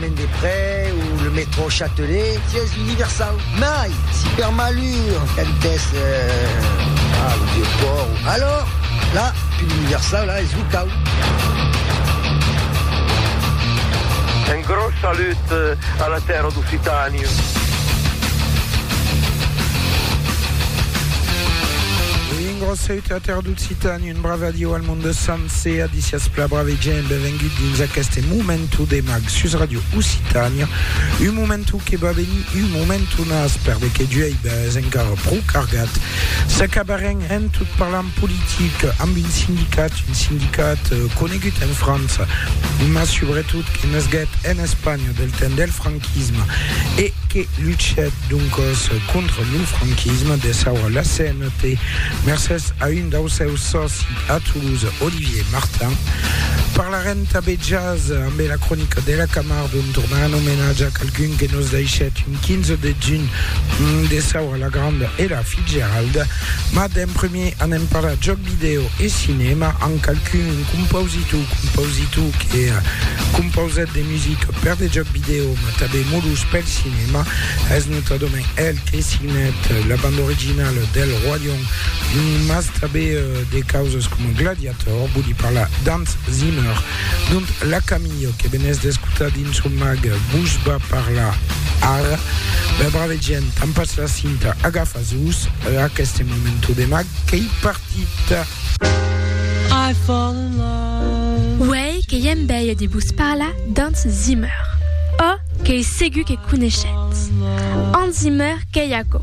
Chemin des Près o le métro Châtelet, si es universau. Mai, si per malur cantès a lo Vieux Port, alors, la, pus universau, la, es lo cau. Un gros salut a la tèrra d'Occitània. Un gròs saute a tèrre d'Occitan, un brave adieu al monde sancer, adicias pla brave gent, benvengut dins aqueste momentu de mag sus Radio Occitània, un momentu que va venir un momentu nas perde que d'uèi bes encara pro cargat. S'acabarem en tot parlant politic amb un sindicat, un sindicat eh, conegut en França, mas subretot que nasguèt en Espanha del temps del franquisme e que luchèt doncòs contra lo franquisme, desaura la scène Té, mercés a un daus seus sòci a Toulouse, Olivier Martin. Parlarem tabé jazz amb la cronica de la Camarde on tornarem homenatge a qualqu'un que nos daishèt un 15 de juny mm, de Saura la Granda e la Fitzgerald. Ma d'en premier anem parlar jòc video e cinèma amb qualqu'un, un compositor, compositor que eh, compausèt de musica per de jòc video ma tabé molus pel cinèma. Es notadament el Que signèt la banda originala del Roi Lion, mas tanben de causas coma Gladiator, vòli parlar d'Hans Zimmer. Dont la Camille, que venètz d'escotar dins son mag, vos va parlar ara. Bèl brave gent, tampatz la cinta, agafatz-vos a aqueste momento de mag qu'ei partit. Uèi que ièm bèia de vos parlar d'Hans Zimmer. Ò, qu'ei segur que coneishetz Hans Zimmer, qu'ei aquò.